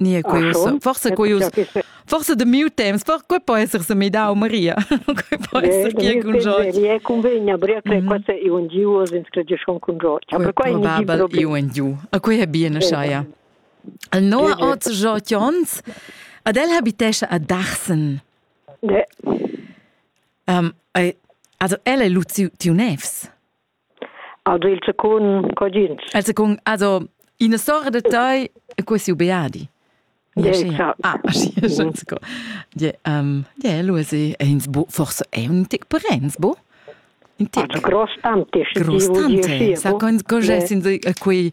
Nie quei ussa forse quei us forse de miu temps for quei po esser se mi dau Maria quei po esser gie cun George mi è convegna bria che questa è un Dio in scredescion con George aber quei probabel è un Dio a quei è bien schai al no oz George Jons ad el habitesce a Dachsen de um, also elle lu tiu nevs Also il secund cogins. El secund also ina storia de tai e quasi ubeadi. Yeah, ah, yeah, um, yeah, Luisi, è ins bo, forse è un tic parents, bo? Un tic. Also gross tanti, gross tanti, sa, con, con gessin, qui,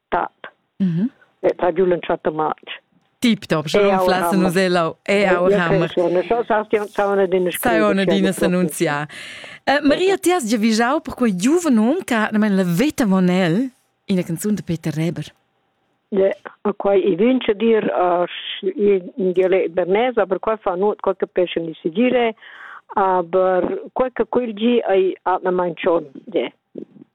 tat. Mm -hmm. E tra giù l'un chatto match. Tip top, schon flassen nus elau. E au hammer. Sai ona dina s'annunzia. Maria, ti has già vigiau per quei giuven hom che ha la veta monel in la canzun de Peter Reber. Ja, ma quai i vince dir in dialect bernese, aber qua fa nur qualche pesce di si dire, aber qualche quel gi ai atna mancion. Ja.